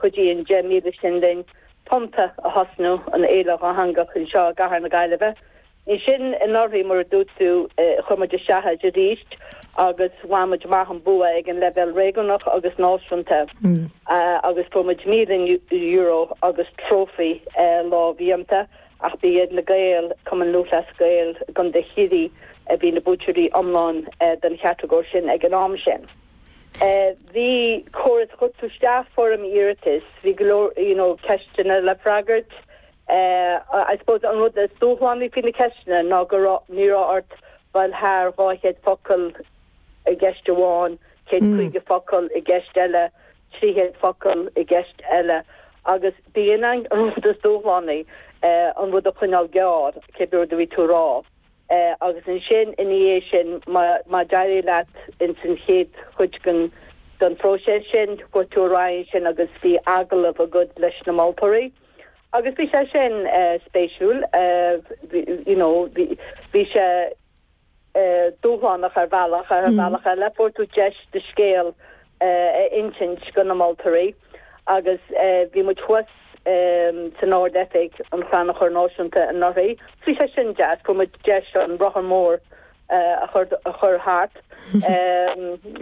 Chuidigh an deich míle sin linn Tonnta a thosnú, an fhéile dhátheangach anseo i gcathair na Gaillimhe. Ansin anuraidh mar a dúirt tú, chuir muid isteach air arís agus bhain muid amach an bua ag an leibhéal réigiúnach agus náisiúnta agus fuair muid €1,000 agus trófaí lámhdhéanta ach ba iad na Gaeil, Cumann Lúthchleas Gael Contae Chiarraí, a bhí ina buaiteoirí iomlán den chatagóir sin ag an am sin. Bhí córas chuir tú isteach, foirm iarratais, bhí go leor you know ceisteanna le freagairt. I suppose an rud is dúshlánaí faoi na ceisteanna ná go raibh, ní raibh ort dul thar 200 focal i gceist amháin, 150 focal i gceist eile, 300 focal i gceist eile agus b'in an rud is dúshlánaí, an rud a choinneáil gearr, cibé rud a bhí tú a rá. Eh, agus ansin ina dhiaidh sin, má, má d'éirigh leat ins an chéad chuid den, den phróiseas sin, chuaigh tú ar aghaidh ansin agus bhí agallamh agat leis na moltóirí agus bhí sé sin, eh, spéisiúil, eh, bhí, you know, bhí, bhí sé, eh, dúshlánach ar bhealach, ar bhealach eile fuair tú deis do scéal a insint do na moltóirí agus bhí muid thuas san Ard-Oifig an Chrannchuir Náisiúnta anuraidh. Bhí sé sin deas, fuair muid deis an rotha mór a chur thart,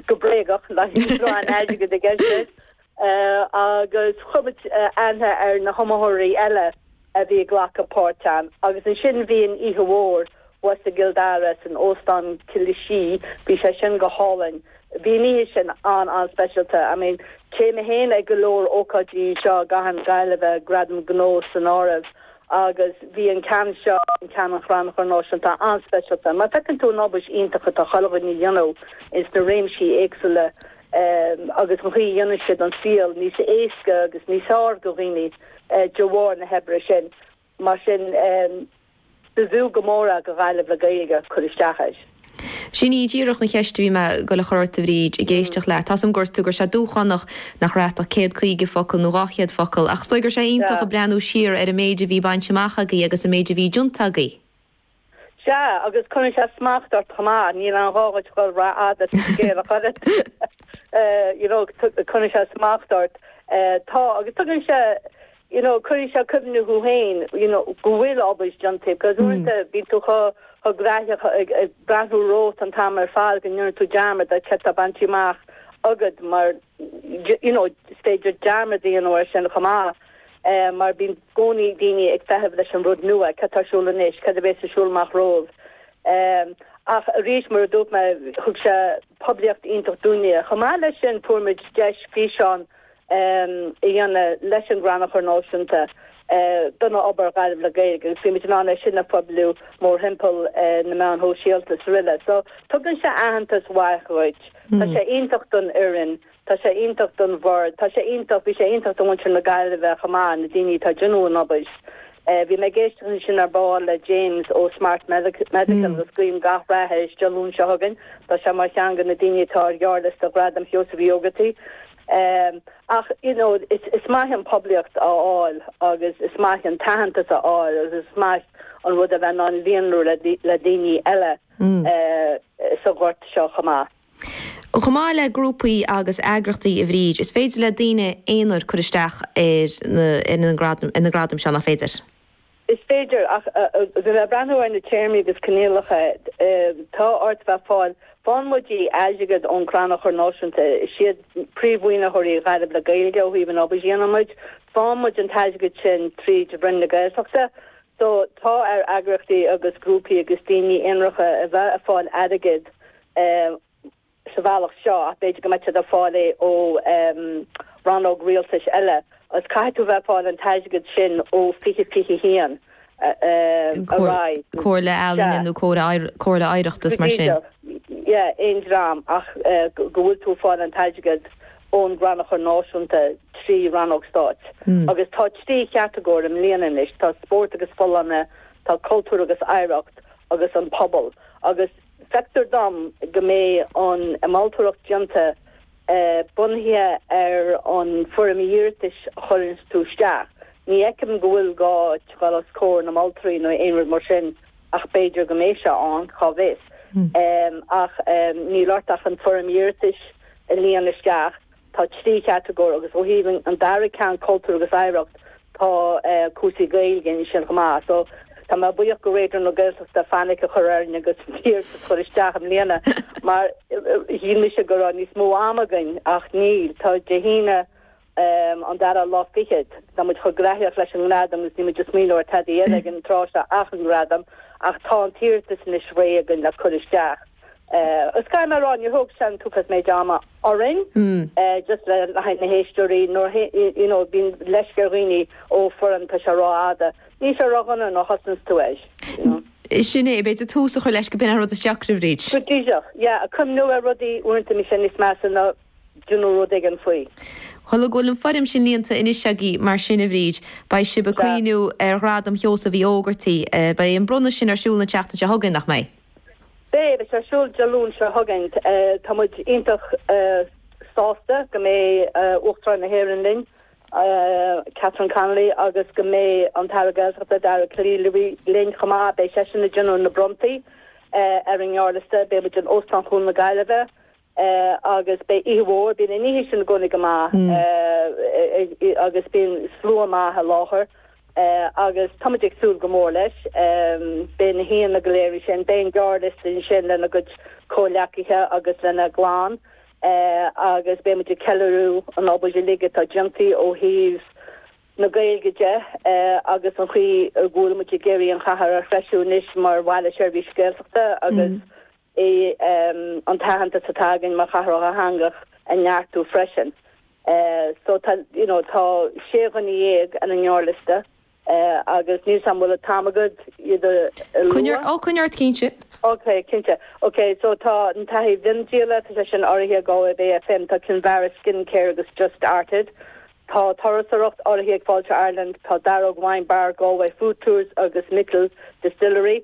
go bréagach, nach raibh aon airgead i gceist leis, agus chuir muid aithne ar na hiomaitheoirí eile a bhí ag glacadh páirt ann agus ansin bhí an oíche mhór thuas i gCill Dara san Óstán Killashee, bhí sé sin go hálainn, bhí an oíche sin an-an-speisialta. I mean, téann mé féin ag go leor ócáidí anseo i gcathair na Gaillimhe, Gradaim Ghnó san áireamh, agus bhí an ceann seo, an ceann an Chrannchuir Náisiúnta, an-speisialta mar feiceann tú an obair iontach atá chuile dhuine a dhéanamh ins na réimsí éagsúla agus an chaoi a dhéanann siad an saol níos éasca agus níos fearr do dhaoine. de bharr na hoibre sin. Mar sin, b'fhiú go mór do Ghaillimh le Gaeilge cur isteach air. Sin í díreach an cheist a bhí mé ag goil a chur ort a Bhríd, ag éisteacht leat. Tá's a'm go dúirt tú go raibh sé dúshlánach nach raibh ach céad caoga focal nó dhá chéad focal, ach is dóigh go raibh sé iontach ag breathnú siar ar an méid a bhí bainte amach agaibh agus an méid a bhí déanta agaibh. Sea, agus cuireann sé smacht ort chomh maith, níl aon ghá dhuit dhul ró fhada is an scéal a chur ort, you know, cuireann sé smacht ort. Tá, agus tugann sé, you know, cuireann sé cuimhníonn tú féin, you know, go bhfuil obair déanta, because uaireanta bíonn tú chomh graitheach ag breathnú romhat an t-am ar fad go ndéanann tú dearmad de céard tá bainte amach agat mar, you know, is féidir dearmad a dhéanamh ar sin chomh maith. mar bíonn gcónaí daoine ag feitheamh leis an rud nua, cad tá ar siúl anois, cad a bheas ar siúl amach roimhe. Ach arís, mar a dúirt mé, thug sé poiblíocht iontach dúinne. Chomh maith leis sin, fuair muid deis físeán a dhéanamh leis an gCrannchur Náisiúnta don obair Gaillimh le Gaeilge agus bhí muid in ann é sin a phoibliú mórthimpeall na meáin shóisialta is araile. So tugann sé aitheantas mhaith dhuit, tá sé iontach don fhoireann, Tá sé iontach don bhord, tá sé iontach, bhí sé iontach do mhuintir na Gaillimhe chomh maith, na daoine atá ag déanamh an obair. Bhí mé ag éisteacht ansin ar ball le James ó Smart Medical agus guím gach rath air Dé Luain seo chugainn, tá sé mar cheann de na daoine atá ar ghearrliosta Ghradam Sheosaimh Uí Ógartaigh. Ach you know is maith an phoiblíocht a fháil agus is maith an t-aitheantas a fháil agus is maith an rud a bheith in ann líonrú le daoine eile sa ghort seo chomh maith. Chomh maith le grúpaí agus eagraíochtaí, a Bhríd, is féidir le daoine aonair cur isteach ar na gradaim seo, nach féidir? Is féidir, ach le breathnú ar na téarmaí agus coinníollacha. Tá ort bheith fáil, faigheann muide airgead ón Crannchur Náisiúnta. Is iad príomh-mhaoinitheoirí Ghaillimh le Gaeilge ó thaobh an obair a dhéanann muid. Faigheann muid an t-airgead sin tríd Roinn na Gaeltachta. So, tá ar eagraíochtaí agus grúpaí agus daoine aonaracha a bheith ag fáil airgead ehm, sa bhealach seo ach b'fhéidir go mbeadh siad ag fáil é ó, ehm, rannóg rialtais eile agus caithfidh tú bheith ag fáil an t-airgead sin ó fiche, fiche a haon, ehm, ar aghaidh. Comh, comhairle ealaíne nó comhairle, comhairle oidhreachta is mar sin? b'fhéidir, yeah, aon dream ach eh, go bhfuil tú ag fáil an t-airgead ón gCrannchur Náisiúnta trí rannóg stáit agus tá trí chatagóir i mbliana anois, tá spórt agus folláine, tá cultúr agus oidhreacht agus an pobal agus. Feictear dom go mbeidh an mholtóireacht déanta bunaithe ar an bhfoirm iarratais a chuireanns tú isteach. Ní fheicim go bhfuil gá dul os comhair na moltóirí nó aon rud mar sin ach b'fhéidir go mbeidh sé ann, cá bhfios. Ach níl ort ach an foirm iarratais a líonadh isteach Tá trí chatagóir agus ó thaobh an dara ceann, cultúr agus oidhreacht, tá cúrsaí Gaeilge ansin chomh maith so tá mé buíoch do Raidió na Gaeltachta fainic a chur orainn agus an t-iarratas a chur isteach i mbliana mar shíl mise go raibh níos mó ama againn ach níl. Tá Dé hAoine an dara lá fichead, tá muid chomh graitheach leis an nGradam agus níl muid ag smaoineamh ar tada eile ag an tráth seo ach an Gradam ach tá an t-iarratas anois réidh againn le cur isteach. Is gá dom a rá, níor thóg sé an méid ama orainn, just le haghaidh na héisteoirí, nuair, you know, bíonn leisce ar dhaoine ó foireann, tá sé ró-fhada, níl sé ró-dhona nuair a thosnaíonns tú air, you know. Sin é, b'fhéidir tús a chur leis a bhíonn an rud is deacra a Bhríd. Go díreach, yeah, ag cuimhneamh ar rudaí uaireanta bíonn sé níos measa ná déanamh rud éigin faoi. Tá súil agam go bhfuil an foirm sin líonta anois agaibh, mar sin, a Bhríd, beidh sibh ag cuimhneamh ar Ghradam Sheosaimh Uí Ógartaigh, beidh an bronnadh sin ar siúl an tseachtain seo chugainn, nach mbeidh? Beidh, beidh sé ar siúl Dé Luain seo chugainn. Tá muid iontach sásta go mbeidh Uachtarán na hÉireann linn, Catherine Connolly, agus go mbeidh an tAire Gaeltachta, Dara Calleary, linn chomh maith. Beidh seisean ag déanamh na bronntaí ar an ngearrliosta. Beidh muid in Óstán Chuan na Gaillimhe. Eh agus beidh oíche mhór, bíonn an oíche sin i gcónaí go maith eh agus bíonn slua maith i láthair eh agus táimid ag súil go mór leis. Eh beidh na haíonna go léir ansin, beidh an gearrliosta ansin lena gcuid comhghleacaithe agus lena gclann eh agus beidh muid ag ceiliúradh an obair uilig atá déanta ó thaobh na Gaeilge de eh agus an chaoi a bhfuil muid ag iarraidh an chathair a threisiú anois mar Bhaile Seirbhíse Gaeltachta agus é an t-aitheantas atá againn mar chathair dhátheangach a neartú freisin. So tá, you know, tá sé dhuine déag ar an ngearrliosta agus níl 'fhios a'm, bhfuil an t-am agat iad a lua? Coinneoidh, á, coinneoidh ort cinnte. Ok, cinnte. Ok, so tá an taithí miondíola, tá sé sin urraithe ag Galway Bay FM, tá Kinvara Skincare agus Just Art It, tá turasóireacht urraithe ag Fáilte Ireland, tá Daróg Wine Bar, Galway Food Tours agus Micil Distillery,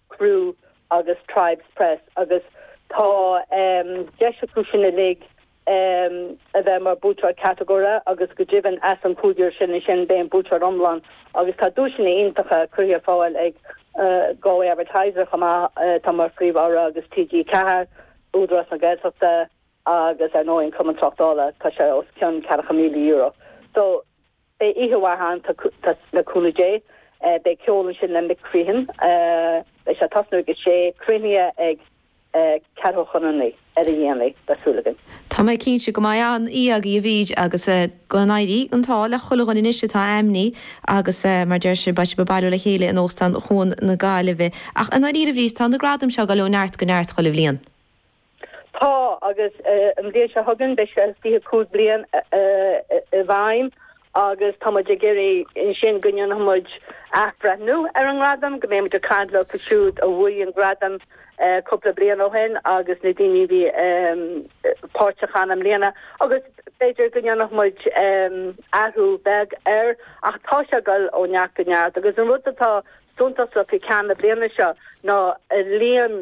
Crew agus Tribes Press agus tá deis acu sin uilig a bheith mar buaiteoir catagóire agus go deimhin as an gcúigear sin ansin beidh an buaiteoir iomlán agus tá duaiseanna iontacha curtha ar fáil ag Galway Advertiser chomh maith, atá mar phríomh-urra, agus TG4, Údarás na Gaeltachta agus ar ndóigh an Cumann Tráchtála, tá sé os cionn ceathrachad míle euro. So. Beidh oíche mhaith ann le cúnamh Dé. Beidh ceol ansin le Mick Crehan. Beidh sé ag tosnú ag a sé. Críochnaithe ag ceathrú chun a naoi, ar a dhéanaí, le súil againn. Tá mé cinnte go mbeidh an-oíche agaibh a Bhríd agus eh go n-éirí an t-ádh le chuile dhuine anois atá ainmnithe agus eh mar deir sibh beidh sibh ag bailiú le chéile in Óstán Chuan na Gaillimhe. Ach i ndáiríre Bhríd tá na gradaim seo ag dul ó neart go neart chuile bhliain. Tá, agus an bhliain seo chugainn beidh sé 25 bliain i bhfeidhm agus tá muid ag iarraidh ansin go ndéanfaidh muid athbhreithniú ar an nGradam, go mbeidh muid ag caint leofa siúd a bhuaigh an Gradam cúpla bliain ó shin agus na daoine a bhí páirteach ann i mbliana agus b'fhéidir go ndéanfaidh muid athrú beag air ach tá sé ag dul ó neart go neart agus an rud atá suntasach i gceann na bliana seo ná an líon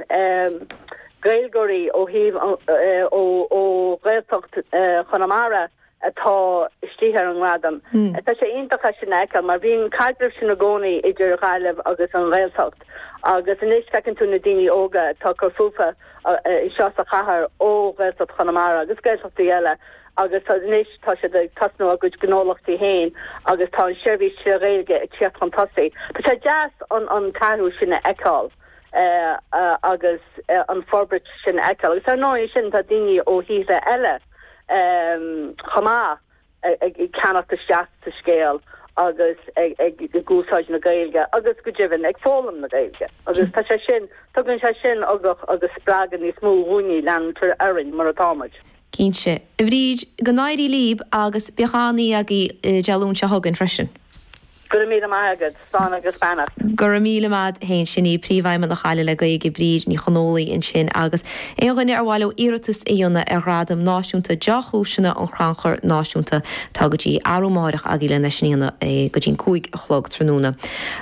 Gaeilgeoirí ó thaobh, ó Ghaeltacht Chonamara atá istigh ar an nGradam. Tá sé iontach é sin a fheiceáil mar bhí an caidreamh sin i gcónaí idir Ghaillimh agus an Ghaeltacht agus anois feiceann tú na daoine óga atá ag cur fúthu anseo sa chathair ó Ghaeltacht Chonamara agus Gaeltachtaí eile agus anois tá siad ag tosnú a gcuid gnólachtaí féin agus tá an tseirbhís trí Ghaeilge ag tíocht chun tosaigh. Tá sé deas an t-athrú sin a fheiceáil agus an forbairt sin a fheiceáil agus ar ndóigh ansin tá daoine ó thíortha eile chomh maith ag ceannach isteach sa scéal agus ag úsáid na Gaeilge agus go deimhin ag foghlaim na Gaeilge agus tá sé sin, tugann sé sin ugach agus spreagadh níos mó dhúinne leanúint orainn mar atá muid. Cinnte, a Bhríd, go n-éirí líb agus bíodh an-oíche agaibh Dé Luain seo chugainn freisin. Go raibh míle maith agat, slán agus beannacht. Go raibh míle maith a'd féin, sin í Príomhfheidhmeannach Ghaillimh le Gaeilge, Bríd Ní Chonghóile ansin agus aon dhuine ar mhaith leo iarratas a dhéanamh ar Ghradam Náisiúnta Deá-Chúiseanna an Chrannchuir Náisiúnta, tá go dtí arú amáireach agaibh lena dhéanamh go dtí'n cúig a chlog tráthnóna.